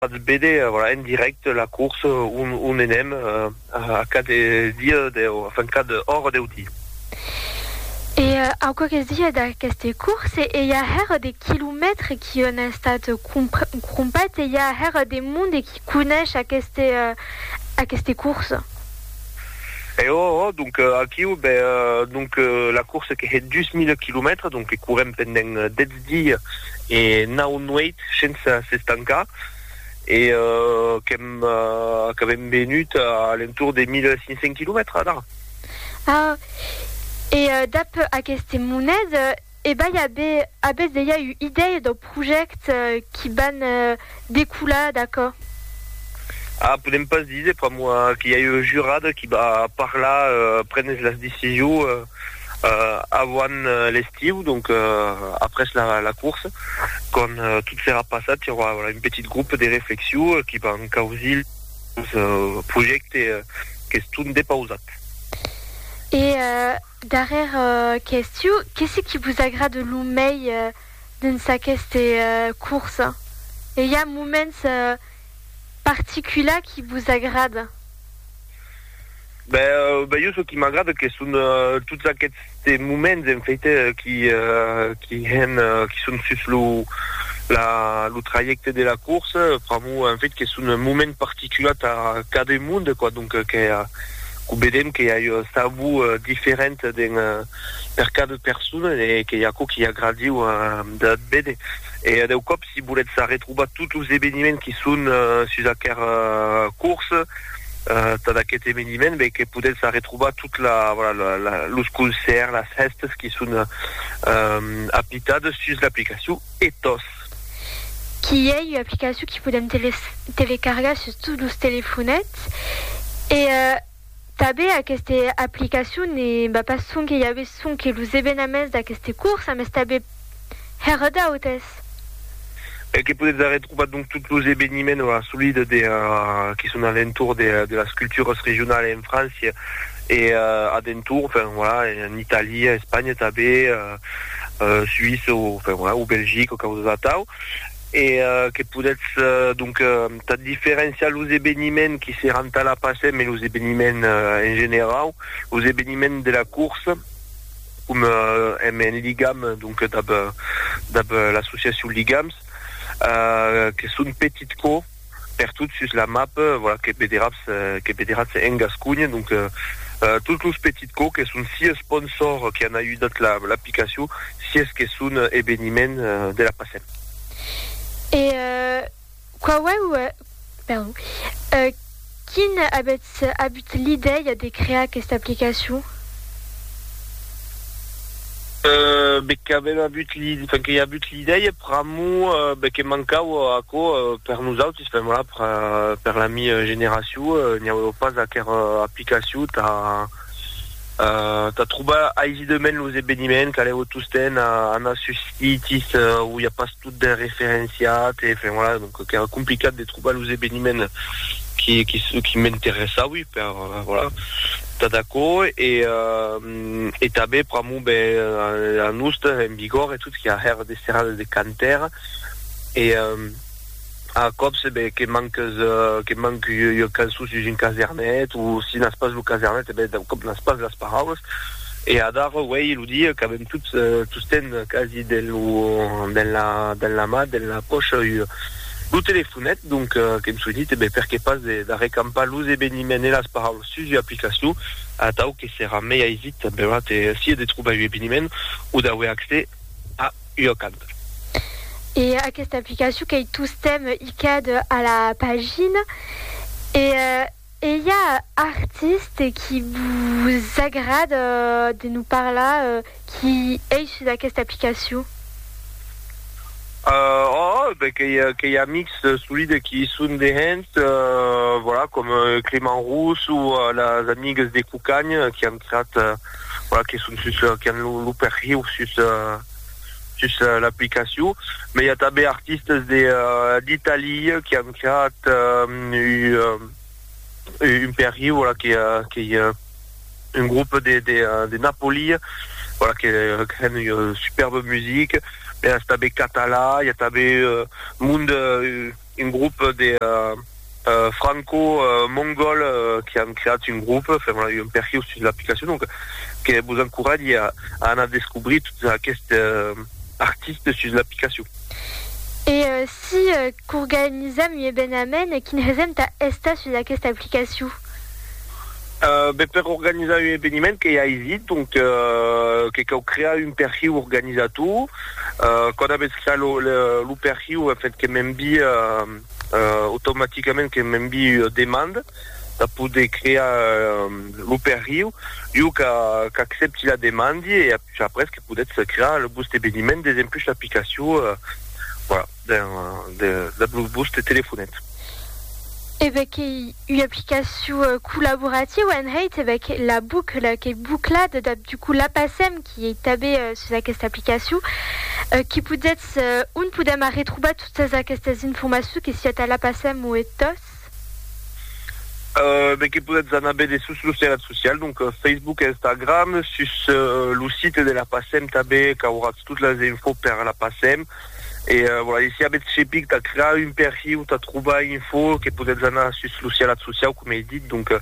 Potz béder en dirècte la course on enèm a quat dia deu, enfin quat ora deu di. E au qualques dia d'aqueste course e i a hèr de quilomètres qui on a estat crompat e i a hèr de monde qui conesh aqueste course. E o o donc aquiu, ben donc la course que hè dus mile quilomètres donc que courèm pendent dètz set dies e nau nueits sense s'estancar e qu'avèm venut a l'entorn de 1.500 quilomètres d'ara. Ah! E dab aqueste monet, ebai, avètz dejà ua idèia dau projècte qui van decolar d'aquò? Ah, podem pas díser pr'amor que i a eu un jurat qui va parlar, prenes las decisions avant l'estiu, donc après la course, quand tot serà passat, i aurà un petit groupe de reflexion qui va encausir los projèctes qu'estón depausat. E darrèr qu'estiu, qué se qui vos agrada lo mei? dins aqueste curs? E i a moments particulars qui vos agrada? Ben, ben jo çò qui m'agrada que son tots aquests moments en fait qui qui hèn qui son sus lo la lo trajècte de la curs pr'amor en fait que son moments particulars tà cada monde quoi donc que que vedèm que i a un sabor diferent dins per cada persona e que i a aquò qui agradiu de véder e a deu còps si volètz arretrobar tots los eveniments qui son sus aquera corsa tad aquest eveniment ben que podètz arretrobar tot la voilà los concerts las hèstas qui son apitades sus l'aplicacion Ethos. Qui ei ua aplicacion qui podèm telecargar sus tots los telefonets e Tanben aqueste aplicacion ne va pas sonque i aver sonque los evenaments d'aqueste cursa, mes tanben hèr d'autes. E que podètz arretrobar donc tot los eveniments o assolida de qui son a l'entorn de de las culturas regionalas en França e a d'entorn, enfin voilà, en Italia, Espanha tanben, Suïssa o enfin voilà, o Belgica o causas atau. e que podètz donc tà diferenciar los eveniments qui seràn tà la Pasm e los eveniments en generau, los eveniments de la corsa com èm en ligam donc dab l'associacion Ligams que son petit cò. pertot sus la map, voilà, que vederatz, que vederatz en Gasconha. Donc, tots los petits cò que son si esponsors que an ajudat la, l'aplicacion, si es que son eveniment de la passèm. E quauèu, perdon, Quin avètz abut l'idèia de crear aquesta aplicacion? Be qu'avèm abut l'idèia, enfin que i a abut l'idèia pr'amor be que mancava aquò per nosautis, enfin voilà, per la mi generacion, n'i aueva pas aquera aplicacion tà, tà trobar aisidament los eveniments, calèu tostemp anar sus sitis où i a pas tot ben referenciat, e enfin voilà, donc qu'èra complicat de trobar los eveniments qui qui qui m'interessaui per voilà tà d'aquò, e e tanben pr'amor ben Anuste en Bigòrre e tot qui a hèr de serrades de cantaire e A còps, ben, que manques, que manc ua cançon sus un casernet, o si n'as pas lo casernet, ben, d'un còp n'as pas las paraulas. E adara, uèi, lo dia qu'avèm tots, tostemp quasi, dens lo, dens la, dens la mà, dens la pòcha, ua, lo telefonet, donc, qu'èm soinit, e ben, per qué pas de, d'arrecampar los eveniments e las paraulas sus ua aplicacion, atau que serà mei aisit, ben, vat, sia de trobar un eveniment o d'auer accès a. ua canta. E aquesta aplicacion qu'ei tostemp icad a la pagina. E ei a artiste qui vos agrada de nos parlar qui ei sus aquesta aplicacion? Òòh, ben qu'ei amics solide qui i son dehens, voilà, com Clément Rousse o las amigues de Cucagn qui an creat voilà, que son sus, que an lo, lo perhiu sus, sus l'aplicacion. Mai i a tanben artistes de, d'Italia que an creat un, un perhiu, voilà, que, que i a un groupe de, de, de Napoli, voilà, que, que an un superbe musique. Mai a tanben catalan, i a tanben monde, Un grop de franco-mongòl que an creat un grop, fèron un perhiu sus l'aplicacion, donc que vos encoratge a anar descobrir totes aquestes artistes sus l'aplicacion. E si qu'organizam un evenament, quin hesèm tà estar sus aquesta aplicacion? Ben, per organizar un eveniment qu'ei aisit, donc que cau crear un perhiu organizator. Quand avètz creat lo lo perhiu, en fait, que m'envii automaticament que m'envii ua demanda tà poder crear lo perhiu. Jo qu'a qu'accepti la demandi e apuish après que podetz crear lo vòste eveniment des empuish l'aplicacion, voilà. Ben, de la Blue Bus te telefonèt. E ben qu'ei ua aplicacion collaborativa en hèit, e ben que la bucla qu'ei buclada, dab du coup la passèm, qui ei tabé sus aquesta aplicacion, qui podetz, on podèm arretrobar totas aquestas informacions que siá tà la passèm o e tòs? E ben que podetz anar bède sus los terratz socials, donc Facebook, Instagram, sus lo site de la passèm tabé qu'auratz tot las infos per la passèm, E voilà, e si avètz cepic tà crear un perfil o tà trobar info que podètz anar sus lo sialat sociau, coma ei dit, donc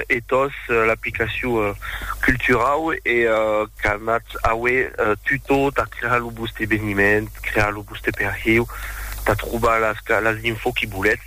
Ethos, l'aplicacion culturau e qu'anatz auer tutò tà crear lo vòste eveniment, crear lo vòste perfil, tà trobar las info que volètz.